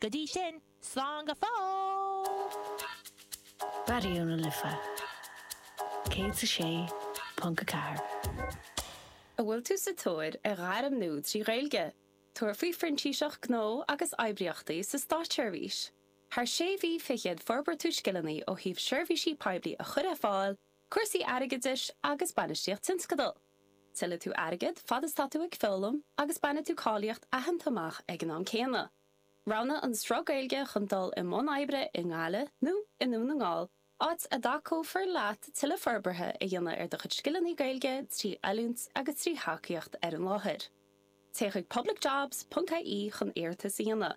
Go dtí sin, slán go fóill! Raidió na Life 106.4. An bhfuil tú sa tóir ar ghairm nua trí Ghaeilge? Tabhair faoi Phrintíseacht Gnó agus Oibríochtaí sa Státseirbhís. Thar sé mhí fichead forbróidh tú scileanna ó thaobh seirbhísí poiblí a chur ar fáil, Cúrsaí airgeadais agus bainistíocht tionscadal. Tuillfidh tú airgead fad is tá tú ag foghlaim agus bainfidh tú cáilíocht aitheanta amach ag an am céanna. Roghnaigh an sruth Gaeilge chun dul i mbun oibre i nGaillimh nó i nDún na nGall, áit a dtacófar leat tuilleadh forbartha a dhéanamh ar do chuid scileanna Gaeilge trí oiliúint agus trí thacaíocht ar an láthair. Téigh chuig publicjobs.ie chun iarratas a dhéanamh.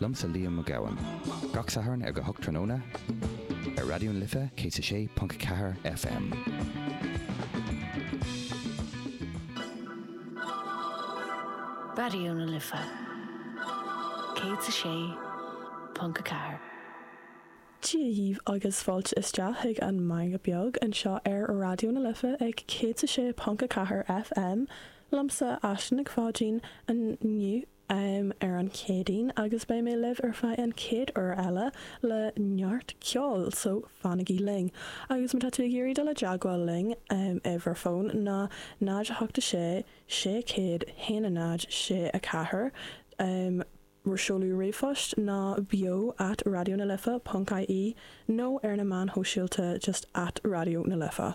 Liomsa Liam Mac Gabhann gach Satharn ar a hocht tráthnóna ar Raidió na Life 106.4 FM. Raidió na Life 106.4. Dia dhaoibh agus fáilte isteach chuig an Meangadh Beag anseo ar Raidió na Life ag 106.4 FM. Liomsa Aisling Nic Pháidín inniu em, ar an Chéadaoin agus beidh mé libh ar feadh an chéad uair eile le neart ceoil so fanaigí linn. Agus má tá tú ag iarraidh dul i dteagmháil linn, em, uimhir fón ná 08 6 600 1 0 6 4, em, seoladh ríomhphost ná beo at raidionalife.ie nó ar na meáin shóisialta just at Raidió na Life.